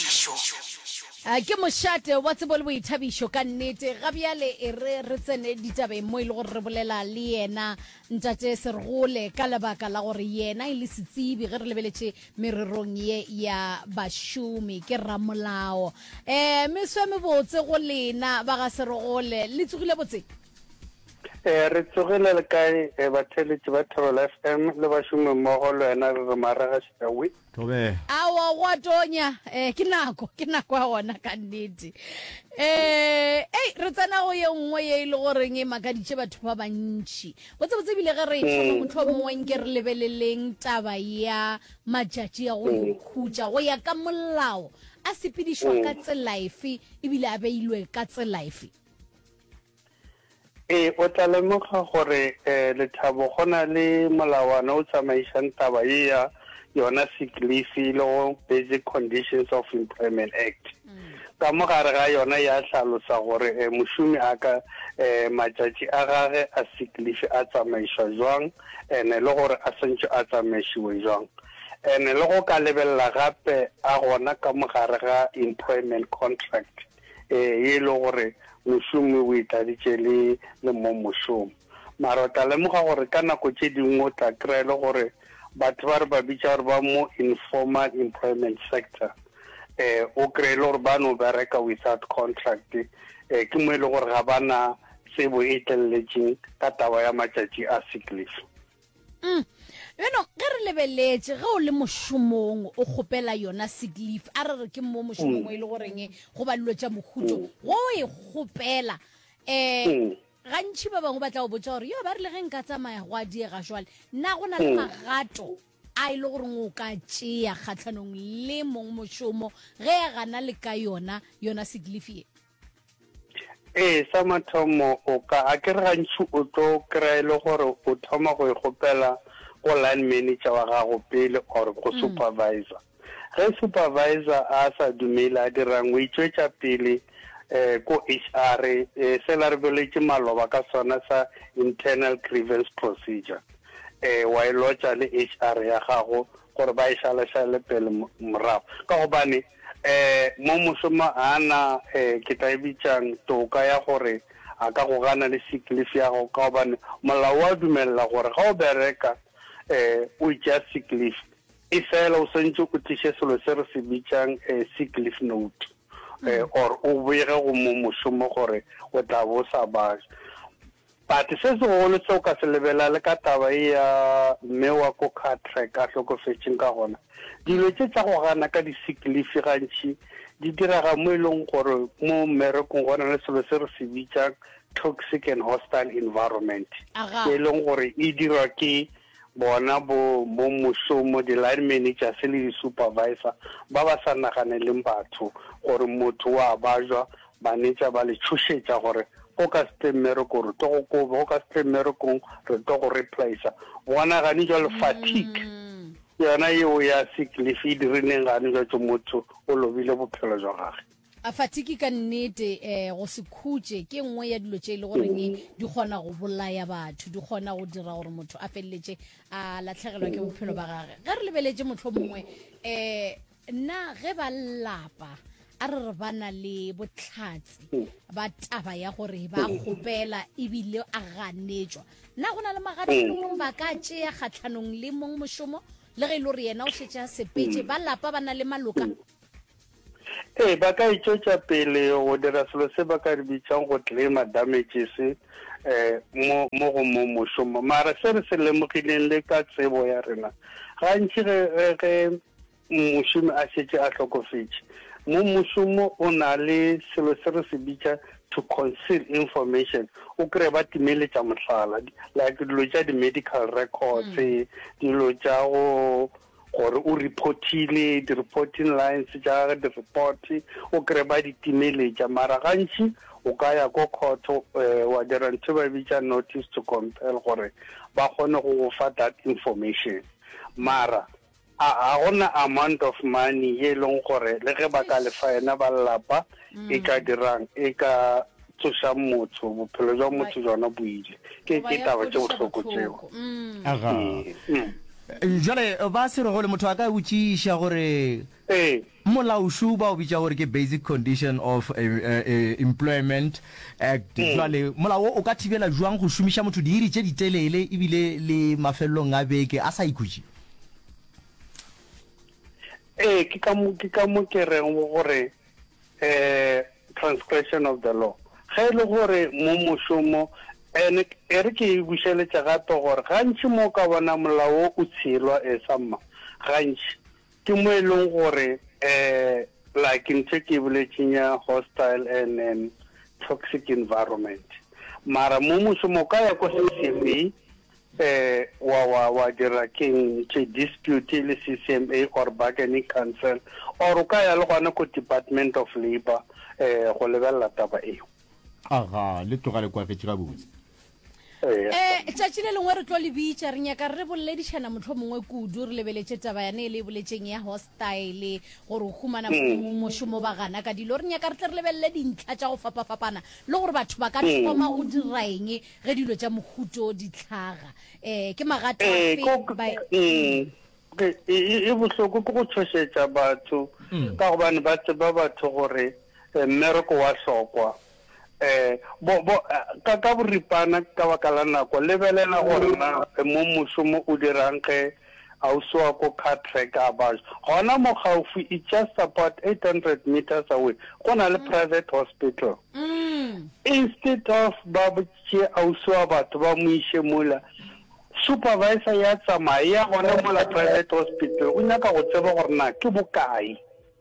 boithabišo. A ke mošate wa tsebo le boithabišo ka nnete. Ga bjale e re re tsene ditabeng mo e le gore re bolela le yena Ntate Sergole ka lebaka la gore yena e le setsebi ge re lebeletše mererong ye ya bašomi ke ramolao. Um meso e mebotse go lena ba ga Sergole, le tsogile botse? E, re tsogile le kae e, batheeletši ba Thobela FM le bašomimmogo le wena re re marega šitawi. Thobela. Aowa go a tonya eh ke nako ke nako ya gona ka nnete eh ei re tsena go ye nngwe ye e le goreng e makaditše batho ba bantši botsebotse ebile ge re e thoma mohlomongwe nke re lebeleleng taba ya matšatši a go ikhutša go ya ka molao a sepedišwa ka tsela efe ebile a beilwe ka tsela efe Ee, o tla lemoga gore eh, Lethabo go na le molawana o tsamaišang taba ye ya yona sick leave le go Basic Conditions of Employment Act. Mm. Ka mo gare ga yona ya hlalosa gore eh, mošomi a ka eh, matšatši a gage a sick leave a tsamaišwa jwang ene le gore a sentšwe a tsamaišiwe jwang. Ene le go ka lebelela gape a gona ka mo gare ga employment contract. ee, ye e lego gore mošomo e o e tladitše le le mo mošomo. Mara o tla lemoga gore ka nako tše dingwe o tla kry-a e le gore batho ba re ba bitša gore ba mo informal employment sector eh o kry-e le gore ba no bereka without contract eh ke mo e le gore ga ba na tsebo e tleleletseng ka taba ya matšatši a sick leave Mm. Beno, ge re lebeletše, ge o le mošomong, o kgopela yona sick leave, a re re ke mo mošomong mm. o e le goreng go ba dilo tša mohuto, mm. go e kgopela. Eh, mm. gantšhi ba bangwe ba tla o botsa gore yo ba rile ge nka tsamaya go a diega jwale nna go na le mm. magato a e le goreng o ka tšea kgatlhanong le mong mošomo ge a gana le ka yona yona sick leave ye Ee, sa mathomo o ka a ke re gantši o tlo kry-a e le gore o thoma go e kgopela go line manager wa gago pele or go mm. supervisor ge supervisor a sa dumele a dirang o itswetša pele um ko h r um se la re beletše maloba ka sona sa internal grievance procedure um wa e lotša le h r ya gago gore ba e šalašale pele morago, ka gobane um mo mošomo a na um ke tla e bitšang toka ya gore a ka go gana le sick leave ya gago, ka gobane molao wa dumelela gore ga o bereka um o itšea sick leave e fela o swantše o tliše selo se re se bitšang um sick leave note um or o boege go mo mošomo gore o tla bo sa ba But se segolo se o ka se lebela le ka taba ye ya mme wa ko car track a hlokofetšeng ka gona, dilo tše tša go gana ka di sick leave gantši di direga mo e leng gore mo mmerekong go na le selo se re se bitsang toxic and hostile environment, e leng gore e dirwa ke bona bo, bomošomo, di-line managers le di-supervisor, ba ba sa naganeleng batho, gore motho wa bajwa, banetša ba le tšhošetša gore go ka se tle mmereko re tlo go koba, go ka se tle mmerekong re tlo go replacer. Bona gane jwa le fatigue mm. yona yeo ya sick leave e dirileng gane jwa tšo motho o lobile bophelo jwa gage. A Fatiki ka nnete eh, go se khutše ke nngwe ya dilo tše e le goreng di kgona go bolaya batho, di kgona go dira gore motho a feleletše a latlhegelwa ke bophelo ba gage. Ge re lebeletše mohlho mongwe um na ge ba lapa a re re ba na le botlhatsi ba taba ya gore ba kgopela ebile a ganetšwa na go na le magatlhanong ba ka tšea kgatlhanong le mong mošomo le ge e le gore yena o šetše a sepetše ba lapa ba na le maloka Ee, ba ka e tšwetša pele go dira selo se ba ka re bitšang go claima damages um mo mo go mo mošomo. Mara se re se lemogileng le ka tsebo ya rena, gantši ge ge ge mošomi a šetše a hlokofetše, mo mošomo o na le selo se re se bitša to conceal information o kry ba timeletša mohlala like dilo tša di-medical records mm. dilo tša go gore o reportile di reporting lines tša gage di report o kry ba di timeletša mara gantši o ka ya ko court um wa dira ntho ba bitša notice to compel gore ba kgone go go fa that information mara a ga gona amount of money ye e leng gore le ge ba ka lefa yena ba lelapa e ka mm. dirang e ka tsošang motho bophelo jwa motho jona bo ile ke ke taba tše bohloko tseo aga jale ba se rego le motho a ka botšiša gore ee molaošu ba o bitša gore ke basic condition of eh, eh, eh, employment act mm. jale molao o ka thibela jwang go šomiša motho diiri tše ditelele ebile le mafelelong a beke a sa ikhutše ee ke ka mo ke reng gore a transgression of the law. Ge e le gore mo mošomo, and e re ke e bušeletše gape gore gantši mo o ka bona molao wo o tshelwa e sa mma, gantši ke mo e leng gore um like ntho e ke e boletšeng ya hostile and um toxic environment. Mara mo mošomo o ka ya ko CCMA, Ee, wa, wa, wa dira keng tše dispute le CCMA or bargaining council, or o ka ya le gona ko Department of Labour um go lebelela taba eo. Aga, le tloga le kwagetse gabotse. Eya. Um tšatši le lengwe re tlo le bitša, re nyaka re boledišana mohlomongwe kudu, re lebeletše taba yane e le e boletšeng ya hostile, gore o humana Mm. mošomo ba gana ka dilo. Re nyaka re tle re lebelele dintlha tša go fapafapana le gore batho ba ka Mm. thoma go diraeng Ge dilo tša mohuto o di tlhaga, e, ke magato a Ee, fe ko, ba e-, mm, ke, e, e, e bohloko ke go tšhošetša batho mm. ka gobane ba tseba batho gore eh, mmereko wa hlokwa eh, bo, bo, eh, ka, ka boripana ka baka la nako lebelela gore na eh, mo mošomo o dirang ge a o swa ko car track a baš gona mo gaufi it's just about 800 meters away go na le mm. private hospital mm. instead of ba tše a o swa batho ba mo iše mola supervisor ya tsamaya ya gona mola private hospital o nyaka go tseba gore na ke bokae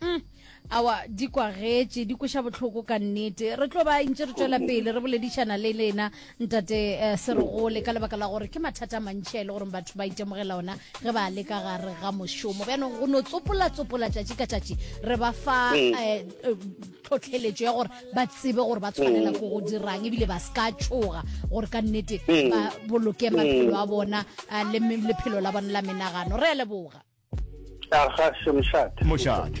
Mm. awa di kwagetše di kweša bohloko ka nnete re tlo ba ntse re tswela pele re boledišana le lena ntate eh, seregole ka lebaka la gore ke mathata a mantšhi a e le goreng batho ba itemogela ona ge ba le ka gare ga mošomo bjanong go no tsopolatsopola tšatši ka tšatši re ba fa Mm. eh, eh, tlhotlheletšo ya gore ba tsebe gore ba tshwanela Mm. ko go dirang ebile ba se ka tšhoga gore ka nnete Mm. ba boloke Mm. maphelo a bona ah, le me- lephelo la bona la menagano re a leboga Aga se mošate. Mošate.